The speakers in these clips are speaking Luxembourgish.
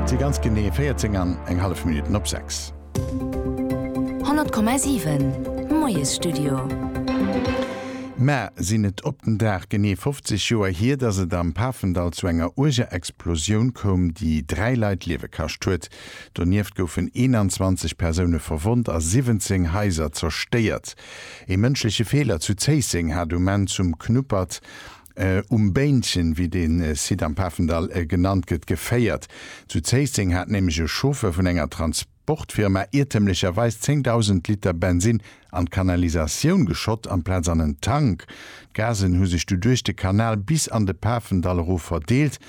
Et si ganz genee 14 an eng hallef Minutten op 6. 100,7, Moiesstudio. Mä sinn et op den Dag genee 50 Joer hier, datt et am Pafendall zu enger uerger Explosioun koum, déi dräi Leit d'Liewe kascht huet. Donieft goufen 21 Persoune verwonnt a 17 Haiser zerstéiert. Ee mënschleche Feeler zu Zéisseng hat um Enn zum Knuppert Um Béinchen, wéi dee Site am Pafendall genannt gëtt, geféiert. Zu Zéisseng hat nämlech e Chauffeur vun enger Transportfirma iertemlecherweis 10.000 Liter Bensinn an d'Kanalisatioun geschott amplaz an en Tank. D'Gasen hu sech du duerch de Kanal bis an de Pafendall erof verdeelt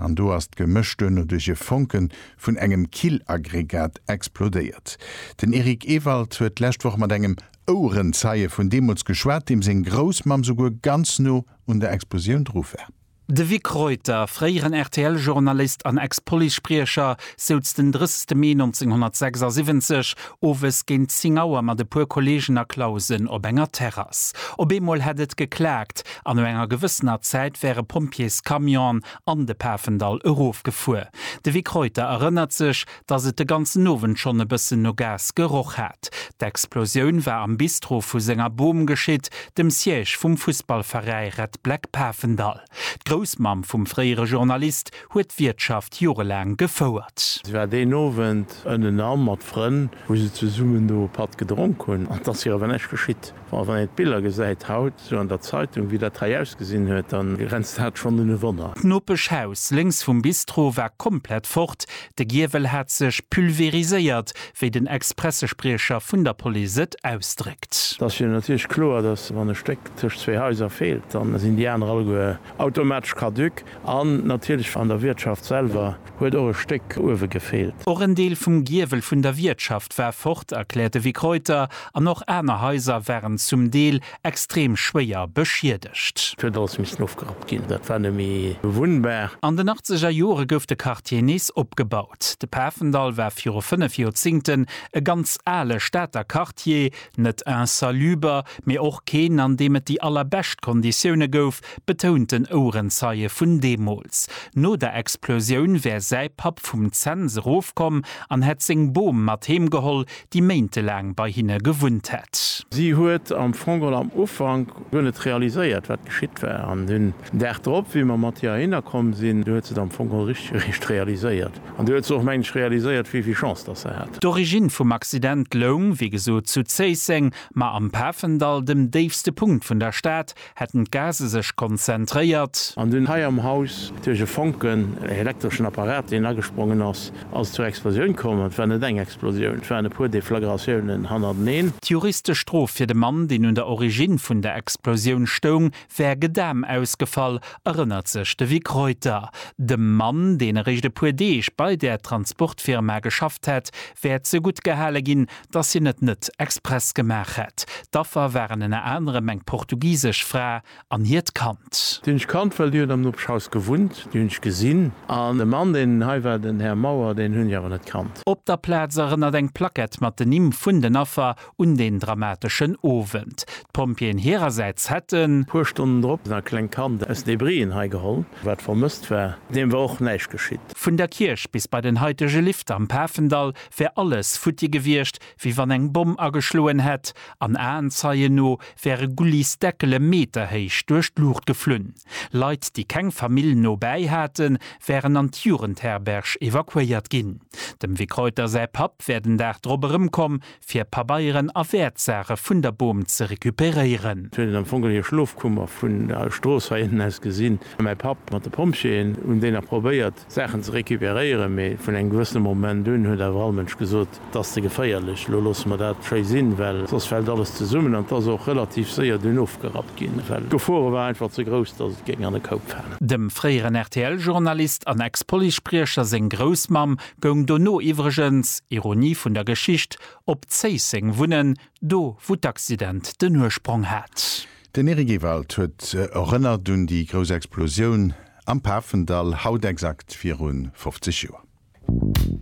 an do ass d'Gemësch duerno duerch e Fonke vun engem Killaggregat explodéiert. Den Eric Ewald huet d'lescht Woch mat engem Ouerenzeie vun deemools geschwat, deem seng Groussmamm souguer ganz no un der Explosioun dru war. De Vic Reuter, fréieren RTL-Journalist an Ex-Police-Spriecher, souz den 30 Mee 1976 owes géint 10 Auer mat e puer Kolleegen a Clausen op enger Terrass. Op eemol hätt et geklaakt an no enger gewëssener Zäit wäre Pompjeescamionen an de Pafendall erofgefuer. De Vic Reuter erënnert sech, dass et de ganzen Owend schonn e bëssen no Gas geroch hat. D'Explosioun war am Bistro vu senger Bom geschitt, dem Siège vum Fussballveräi Red Black Pafendall. D'Groussmamm vum fréiere Journalist huet d'Wiertschaft jorelaang gefouert. Si war deen Owend ënnenan mat Frënn, wou se zesummen do e Patt gedronk hunn. An et ass hir awer näischt geschitt. Bon, wann een d'Biller gesäit haut sou an der Zeitung, wéi dat hei ausgesinn huet, da grenzt dat schonn un e Wonner. D'Nopeschhaus lénks vum Bistro war komplett fort, de Giewel hat sech pulveriséiert, wéi den Ex-Pressespriecher vun der Police et ausdréckt. Et ass jo natierlech kloer, dass wann e Stéck tëscht zwee Haiser feelt, da sinn déi aner alleguer automatesch caduc. An natierlech an der Wiertschaft selwer huet och e Stéck uewe gefeelt. Och en Deel vum Giewel vun der Wiertschaft war fort, erkläert de Vic Reuter, an och aner Haiser waren zum Deel extrem schwéier beschiedegt. Et huet alles missen ofgerappt ginn, dat war net méi bewunnbar. An den achtzeger Jore gouf de Quartier nees opgebaut. De Pafendall war viru fënnef Joerzingten e ganz ale Stater Quartier, net insaluber, mee och keen, an deem et déi allerbescht Konditioune gouf, betount den Ouerenzeie vun deemools. No der Explosioun wär säi Papp vum Zens erofkomm an hätt seng Bom mat heem geholl, déi méintelaang bei hinne gewunnt hätt. Si huet am Fong geholl am Ufank guer net realiséiert, wat geschitt war. An den Dag drop, wéi mer mat hir heihinner komm sinn, du huet se et am Fong geholl richteg eréischt realiséiert. An du huet se och, meng ech, realiséiert, wéi vill Chance datt se hat. D'Origine vum Accident loung, wéi gesot, zu Zéisseng, ma am Pafendall, dem déifste Punkt vun der Stad, Hätten d'Gase sech konzentréiert. An dunn hei am Haus duerch e Fonken, ee elektreschen Apparat, deen agesprongen ass, ass et zur Explosioun komm. An et war net eng Explosioun, et waren e puer Deflagratiounen hannerteneen. D'juristesch Strof fir de Mann, deen un der Origine vun der Explosioun stoung, wär Gedam ausgefall, erënnert sech de Vic Reuter. Dem Mann, deen eréischt e puer Deeg bei där Transportfirma geschafft hätt, wär zeguttgehale ginn, dass hien et net express gemaach hätt. D'Affer waren ënner anerem eng portugisesch Fra an hiert Kand. Déi hunn ech kannt, well déi huet am Nopeschhaus gewunnt. Déi hunn ech gesinn. An de Mann, deen hei war, den Här Mauer, deen hunn ech awer net kannt. Op der Plaz erënnert eng Plackett mat den Nimm vun den Affer un deen dramateschen Owend. D'Pompjeeën hirersäits hätten. Puer Stonnen drop e klengt Kand aus Debrien hei geholl, wat vermësst war. Deem war och näischt geschitt. Vun der Kierch bis bei den haitege Lift am Pafendall wär alles futti gewiescht, wéi wann eng Bomm ageschloen hätt, an Aenzeien no wäre Gullis Deckele meterhéich duerch d'Luucht geflunn. Leit, déi keng Famill no bäi haten, wären an d'Jugendherberg evakuéiert ginn. Dem Vic Reuter säi Papp wär den Dag drop erëmkomm, fir Pabeieren a Wäertsaache vun der Bom ze recuperéieren. Sou huet et am Fong un hir Schlofkummer vun der Strooss hei ënnen aus gesinn. Mäi Papp mat de Pompjeeën hunn déi nach probéiert Saachen ze recuperéieren, mee vun engem gewëssene Moment un huet awer all Mënsch gesot, Et ass ze geféierlech, elo loosse mer dat schéi sinn, well soss fält alles zesummen. An et ass och relativ séier dunn ofgerappt ginn, well d'Gefore war einfach ze grouss, datt et géing an e Koup falen. Dem fréieren RTL-Journalist an Ex-Police-Spriecher seng Groussmamm goung dono iwwregens, Ironie vun der Geschicht, op Zéisseng wunnen, do wou d'Accident den Ursprong hat. Den Eric Ewald huet erënnert un déi grouss Explosioun. am Pafendall, haut exakt virun 50 Joer.